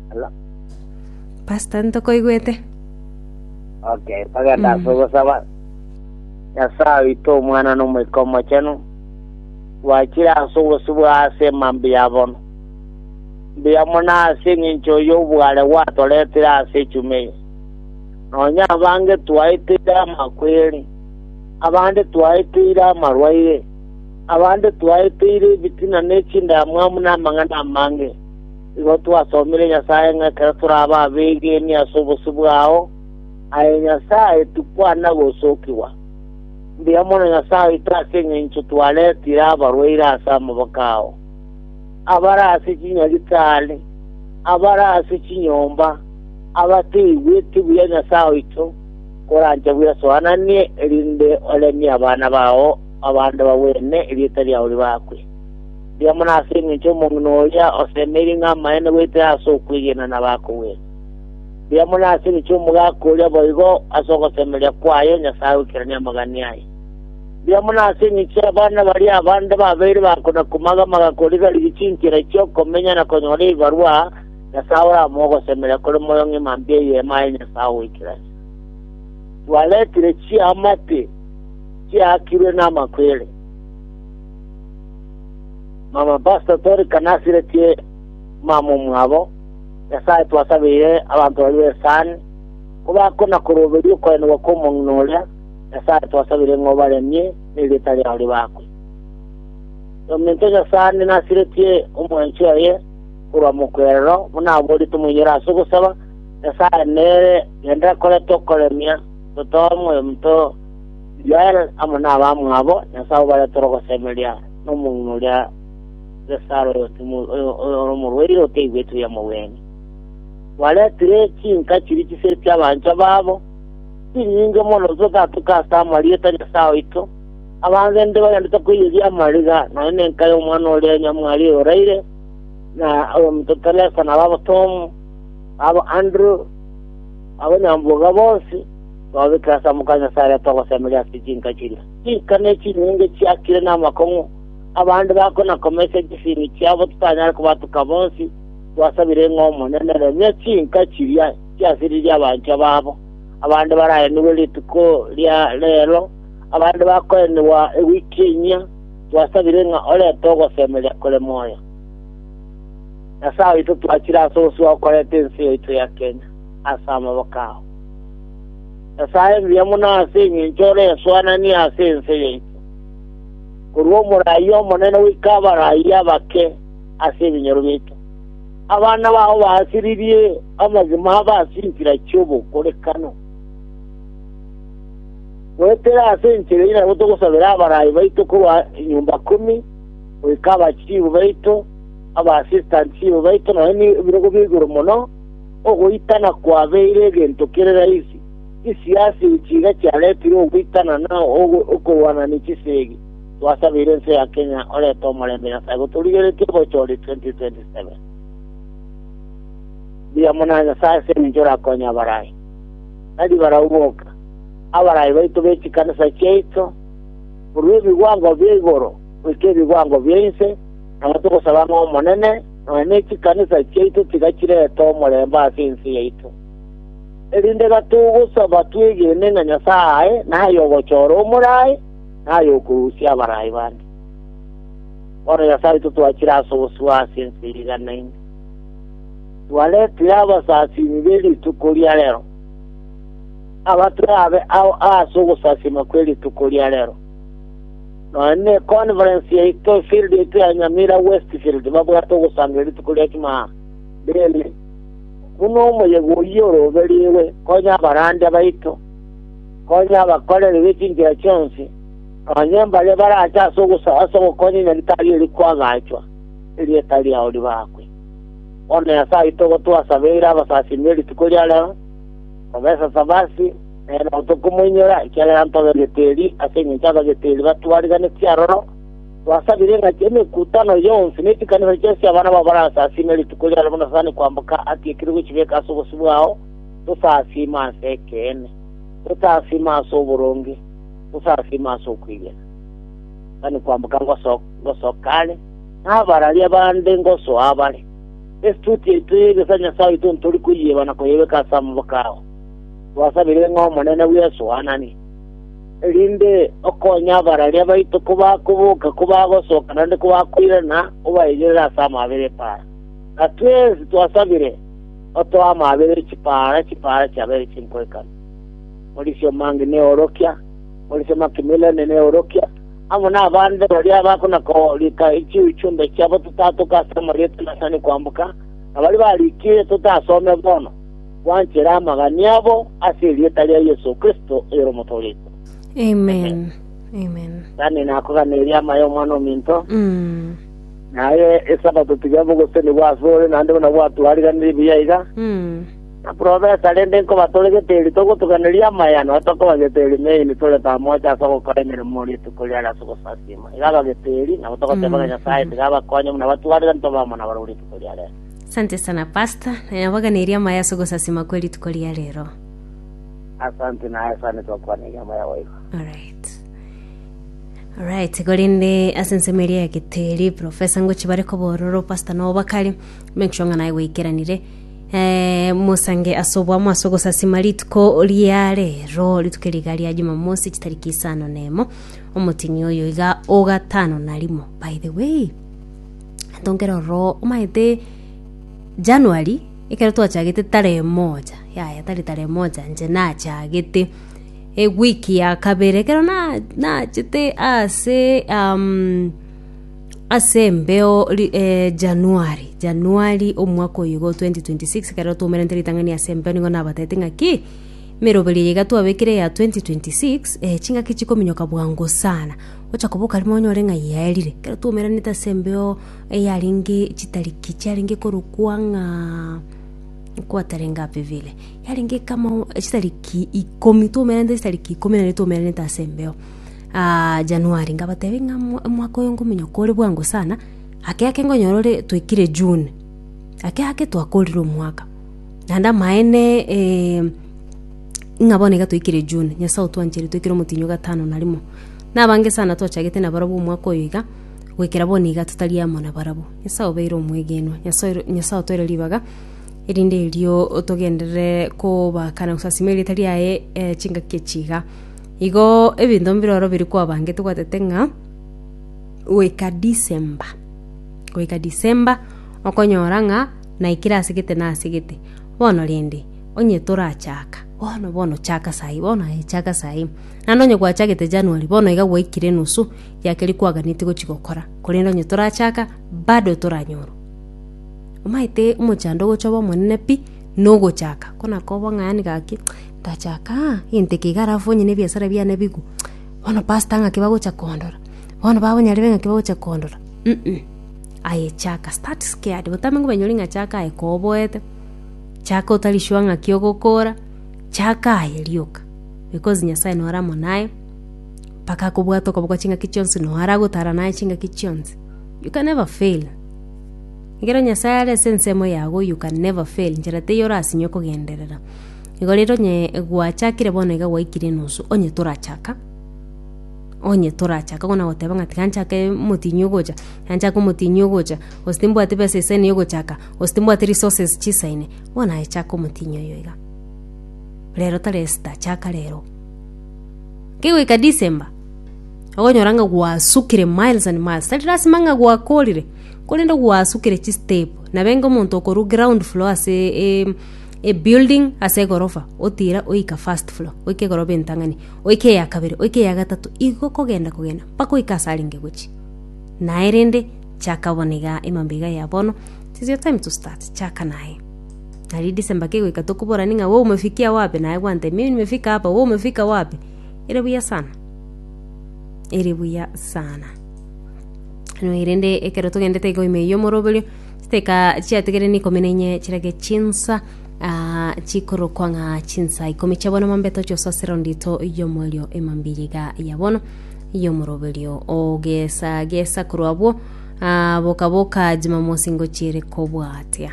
Hello. Pastor ntokoigwete. Okay, bagenda Mm. ase ogosaba. Nyasaye oito omwana na omoika omochenu. Gwachire ase obosibwa ase emambi ya bono. Mbuya mono ase eng'encho y'obware gwatoretire ase echumi eye. Nonya abange twaeteire amakweri, abande twaeteire amarwaire, Abande twaeteire ebitina ne chindamwamu namang'ana amange. Igo twasomire Nyasae ng'a ekero torabe abeegeni ase obosio bwao, aye Nyasae, tikwana gosokigwa. Mbuya mono Nyasae oito ase engencho twaretire abarwaire ase amaboko ao, abare ase chinyagitari, abare ase chinyomba, abataigweti buya Nyasae oito, korancha bwesoananie, erinde oremie abana bao, Abanto bagwene erieta riao ribakwe. Rigia mono ase engencho omong'ina oria osemeirie ng'a amaene goetera ase okwegena na bakogwene. Rigia mono ase engencho omogaka oria boigo ase ogosemeria kwaye Nyasae oikeranie amagani aye. Rigia mono ase engencho y'abana baria abande babeire bakona komaga-maga koriga-rigia chinchera chi'okomenya na konyora ebibarwa, Nyasae oramoe ogosemeria kore moyo ng'ima mbe ey'Eema ya Nyasae ogoikerania. Twaretire chiamate. chiakirwe namakwere. Mama Pastor Tori kanasiretie mama omwabo, Nyasaye twasabeire abanto baria b'esani, kobakona koroberia okoenigwa kw'omong'ina oria, Nyasaye twasabeire ng'a obaremie nerieta riao ribakwe. Yominto Nyasaani nasiretie omwanchi oye korwa mokwerero, buna aborie tomoinyore ase ogosaba, Nyasaye nere genda kore tokoremia totoe moyo mito Joel amo nabamwabo Nyasae obaretire ogosemeria nomong'ina oria Besaro ore omorwaire otaigwetwe y'omogwenia. Baretire chinka chiria chiseri chi'abanchwa babo, chinyinge mono totatuka ase amarieta a Nyasae oito, abange inde bagendete koiyeria amariga, nonya nenka y'omwana oria nyamwari oraire, na oyominto Teresa, na ababo Tom, na ababo Andrew, na abanyamboga bonsi. Twabeke ase amoko a Nyasae aria togosemeria ase chinka chiria. Chinka nechinyinge chiakire namakong'u, abande bakwe na komesia chisimi chiabo totanyare kobatuka bonsi, twasabire ng'a Omonene remia chinka chiria chiasiririe abanchwa babo, abande baraenigwe rituko ria reero, abande bakoenigwa ewiki enyia, twasabire ng'a orete ogosemeria kore moyo. Nyasae oito twachire ase obosio okoreta ense yaito ya Kenya. ase amaboko ao. Nyasae mbuya mono ase engencho ore esoananie ase ense yaito, korwa omoraia omonene goika abaraia abake ase ebinyoro biaito. Abana bao baasiririe amagima abo ase enchera chi'obokorekano. Goetera ase enchera eye nabo togosabera abarai baito korwa enyomba kumi, goika abachiibu baito, aba assistant chiibu baito, nonya nebirogo bia igoro mono, Ogoitana kwabeire egento kere raisi. Chisiasi chiga chiaretire ogoitana na okorwana ne chisegi. Twasabeire ense ya Kenya orete omorembe Nyasae gotorigeretie bochori 2027. Mbuya mono a Nyasae ase engencho orakonye abarai. Tari barau boka, abarai baito be chikanisa chiaito, korwa ebigwango bia igoro goika ebigwango bia inse, nabo togosaba ng'a Omonene, Nonya nechikanisa chiaito tiga chirete omorembe ase ense yaito, erinde iga togosaba twegene ng'a Nyasae aye naye ogochora omoraai na aye okorusia abaraai bande. Bono Nyasae oito twachire ase obosibwa ase ense eriganane, twaretire abasasiimi be rituko ria rero, abatwe abe ao aase ogosasiima kwe rituko ria rero. Nonya ne Conference yaito, efield yaito ya Nyamira Westfield babwate ogosangereria rituko ria Jumaa rende buna omoyega oyio oroberigwe. Konya abarandia baito, konya abakoreri be chinchera chionsi, nonya mbaria barache ase ogosaaba ase ogokonya Nyaritari eri kwagachwa, erieta riao ribakwe. Bono Nyasae oito ogo twasabeire abasasiimi erituko ria rero, Professor Savasi, Ee, nabo tokomoinyora, ekiagera ntogegete eri, ase engencho abagete eri batwariganeti aroro. Twasabire ng'a emekutano yonsi ne chikanisa chionsi chi'abana bao barasasiime rituko riaro buna Satani kwamboka atiekire gochibeka ase obosio bwao, tosasiime ase ekeene, tosasiime ase oboronge, tosasiime ase okwegena. Satani kwamboka ngoso- ngosoka are, na abararia bande ngosoa abare. Estuti yaito y'egesaria Nyasae oito ntori koyieba na koyebeka ase amaboko ao. Twasabire ng'a Omonene bw'Yeso aanane, erinde okonye abararia baito kobakoboka, kobagosoka, naende kobakoirana, obaegerere ase amaabera epaara. Na twensi twasabire otoe amaabera e chipaara, chipaara chiabeire chinkoikano. Morisio Mangi neorokia, Morisio Makimileni neorokia, amo nabande baria bakona korika chiuchumbe chiabo totatoka ase amarieta nasani kwamboka, na baria barikiire totasome bono. gwanchera amagania abo ase erieta ria Yeso Kristo oyore omotoorigwa. Amen. Amen. Tani nakoganeria amaya omwana ominto, na aye Esabato tiga bogotenigwa ase ore naende buna gwatwariganirie buya iga, na profesa, rende nkoba tore geteri togotoganeria amaya, nonya tokoba geteri main tore tamocha ase ogokora emeremo rituko riare ase ogosasiima. Iga aba geteri, nabo togoteba ng'a Nyasae tiga abakonye buna batwariganire tobe amo nabare rituko riarenge. Asante sana pastor, nabaganirie amaya ase ogosasima kwe rituko ria rero. Asante na asante twakwana eria maya goigo. Alright. Alright, gorende ase ensemo eria ya geteri profesa ngochi bare kobororo pastor no bakari make sure ng'ana gweikeranire eh, mosange ase obwamo ase ogosasima rituko ria rero rituko riga ria jumamosi chitariki isano nemo omotini oyo iga ogatano na rimo by the way Tongera ororo omanyete January, ekero twachagete tarehe moja, yaya tari tarehe moja inche nachagete eweek ya kabere ekero na- nachete ase ase embeo ri January, January omwaka oyo igo twenty twenty six ekero twaumerente ritang'ani ase embeo nigo nabatebiete ng'aki, emeroberio eye iga twabekire ya twenty twenty six chingaki chikominyoka bwango sana. Gocha koboka rimo onye ore ng'ai yaerire, ekero twoumeranete ase embeo eyarenge chitariki chiarenge korokwa ng'a equator engape vile, yarenge kama chitariki ikomi, twoumeranete chitariki ikomi naende twoumeranete ase embeo aaah January, ngabatebia ng'a omo- omwaka oyo nkominyoka ore bwango sana, ake ake nkonyora ore twaikire June, ake ake twakorire omwaka, naende amaene. Ng'a bono iga toikire June, Nyasae otwanchire toikire omotienyi o gatano na rimo. Nabange sana twachagete nabarabwo omwaka oyo iga, goikera bono iga totari amo nabarabwo. Nyasae obeire omwegenwa. Nyasae Nyasae otoire ribaga, erinde erio togenderere kobakana gosasima erieta riaye eh, chingaki echi iga. Igo ebinto mbire oro biri kwabangete gwatete ng'a goika December goika December okonyora ng'a naikire asegete nasegete. Bono rende. Onye torachaka bono bono, chaka sai, bono aye, chaka sai. Naende onye gwachagete January, bono iga gwaikire enusu ya keria kwaganetie gochia gokora, korende onye torachaka, bado toranyorwa. Omanyete omochando ogocha obe omonene pi, na ogochaka. Ko nakoba ng'ani gaki, ndachaka aa, egento eke iga alafu onye na ebiasara biane bigwe, bono pastor ng'aki bagocha kondora, bono bakonyarebe ng'aki bagocha kondora, um. Aye chaka, start scared, botambe ng'obenyori ng'a chaka aye koboete. Chaka otarishwa ng'aki ogokoora, chaka aye rioka, because Nyasae nore amo naye, mpaka akobwate okoboko ase ching'aki chionsi, noo aragotara naye ase ching'aki chionsi. You can never fail. Ekero Nyasae are ase ensemo yago, you can never fail, nchera teiyo orasinye kogenderera. Igo rero onye gwachakire bono iga gwaikire enusu, onye torachaka, onye torachaka bono ogoteba ng'a tiga nchake omotienyi ogocha, tiga nchake omotienyi ogocha, gose timbwati besa isani yogochaka. Gose timbwati resources chisaine, bono aye chaka omotienyi oyo iga. Rero tari Esther, chaka rero. Kegoika December, ogonyora ng'a gwasukire miles and miles. Tari lasima ng'a gwakorire, korende gwasukire chistep. Nabenge omonto okorwa ground floor ase e- e building ase egorofa, otira oika first floor, oika egorofa entang'ani, oika eya kabere, oika eya gatato, igo kogenda kogenda mpaka oika ase arenge gochia. Naye rende. Chaka bono iga emambe iga ya bono. It is your time to start. Chaka naye. Nari December kegoika tokoborani ng'a wewe umefikia wapi naye gwante mimi nimefika hapa wewe umefika wapi. Ere buya sana. Ere buya sana. No erende ekero togendete igo ime yo moroberio chiteka chiategere ni ikumi na inye chirage chinsa ah, chikorokwa ng'a chinsa ikomi chia bono mambe tochosa surround ito yomorio emambe iga ya bono y'omoroberio ogesagesa korwa abwo, aa, boka-boka chimamosingo chi'ere kobwatia.